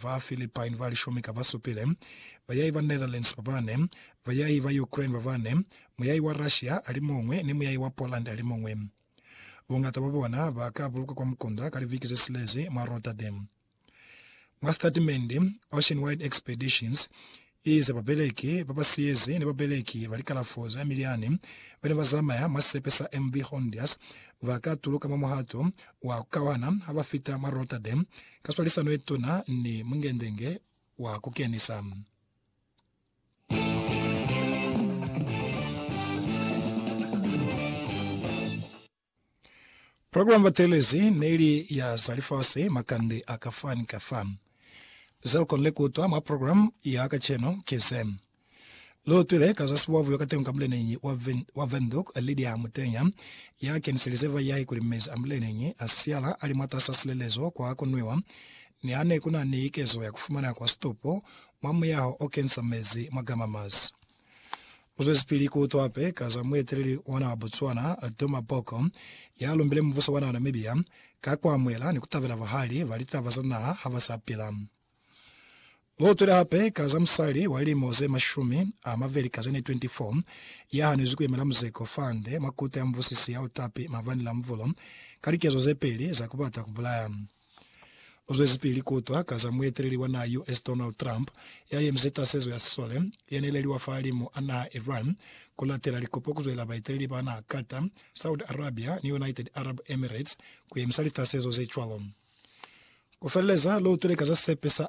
Ba Philippine ba lishumi ka basupile, bayai ba Netherlands ba bane, bayai ba Ukraine ba bane, muyai wa Russia alimuñwi ni muyai wa Poland alimuñwi. Buñata bwa bona ba ka bulukwa kwa mukunda ka liviki ze silezi mwa Rotterdam. Mwa sitatimendi, Ocean-Wide Expeditions Ye za babeleki ba ba siyezi ni babeleki ba likalafo za miliani ba ne ba zamaya mwa sisepe sa MV Hondias ba ka tuluka mwa muhato wa ku kauhana ha ba fita mwa Rotterdam ka swalisano ye tuna ni mungendenge wa ku kenisa. Program batelezi neli ya za lifasi makande a ka fa ni ka fa. Ze lu konile ku utwa mwa program ya kacenu ki ze. Lu utwile ka za sibuabuo katengo ka muleneñi wa Windhoek Lydia Mutenya, ya keniselize bayahi kuli mezi a muleneñi a siala a li mwatas'a silelezo kwa ku nwiwa, ni ha ne ku na ni likezo ya ku fumana kwa situpo mwa muyaho o kenisa mezi mwa gamama's. Uzwezipili kuutwa pe ka za mueteleli ona wa Botswana, Duma Boko, ya lumbile mubuso wa naha Namibia ka kuamuhela ni kutabela bahali ba litaba za naha ha ba sa pila. Luutwile hape ka za musali wa lilimo ze mashumi a mabeli ka ze ne 24 ya hanwezi kuyemela muzeko fande mwa Kuta ya Mubusisi ya Utapi mabani la Mvulo ka likezo ze peli za kubata kubulaya. Uzwezipili kuutwa ka za mueteleli wa naha US Donald Trump ya yemize tasezo ya sisole yeneleliwa fahalimu a naha Iran kulatela likopo kuzwelela baeteleli ba naha Qatar, Saudi Arabia ni United Arab Emirates kuyemisa litasezo zecwalo. Kufeleleza, loutwile ka za sepe sa.